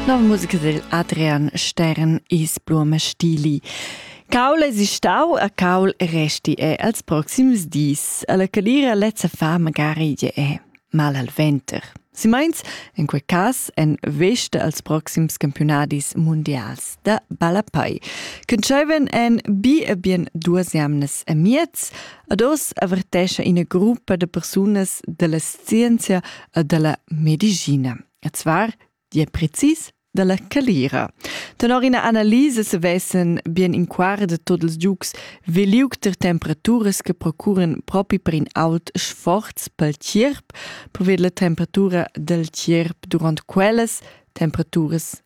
Nov musica del Adrian Stern is Blume Stili. Caul es istau a caul resti e als proxims dis. Alla calira lezza fa magari je è mal al venter. Si meins, in quei cas, en veste als proxims campionadis mundials da ballapai. Conceven en bi e bien duas jamnas e miez, ad os avertescha ina gruppa de persunas della scienzia dalla medicina. E zvar di è precis dalla calira. Tenor ina analisa se vessen bien in quart tot ils giugs veliuc ter temperaturas che procuren propi per in aut sforz pel tierp, previd la temperatura del tierp durant quellas temperaturas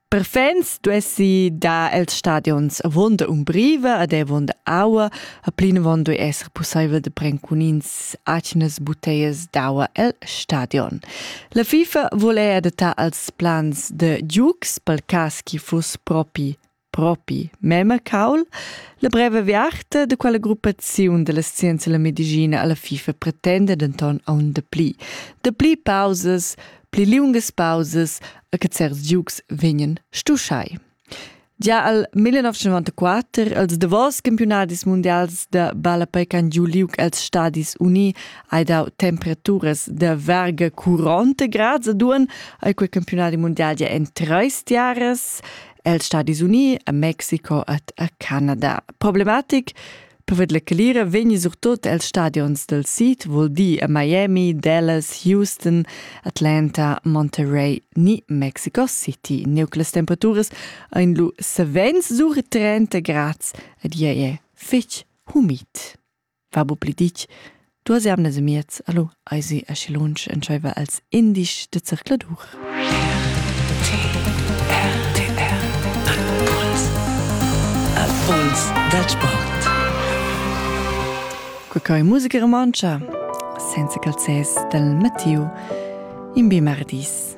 Per fans duessi dar els stadions avonda umbriva ed avonda aua, a plinavon duei esser pusseivel de pren cun ins atgnas buteias d'aua el stadion. La FIFA vul ei adattar als plans de Dukes pel cas chi fuss propi propi mema caul. La breve viarta de quella gruppaziun della scienza e la medicina alla FIFA pretende denton aun de pli. De pli pausas, pli liungas pausas, e che certs giugs vegnan stuschai. Gia al 1994, als davos campionadis mundials da ballapei han giu liug els Stadis Uni hai dau temperaturas da verga curante grads a duan ai quei campionadi mundial gia en treis tiaras els Stadis Uni, a Mexico ed a Canada. Problematic Poved la calira vegni surtot els stadions del sid, vul dir a Miami, Dallas, Houston, Atlanta, Monterey ni Mexico City. Neuc las temperaturas ein lu savens sur 30 grads ed ei è fetg humid. Va bu pli ditg Duas jamnas e miez, allo, eisi aschi lunsch entscheiva els indisch de zercladur. Impuls del sport. Quei musica romantscha, senza calzes del Mattiu, in bi mardis.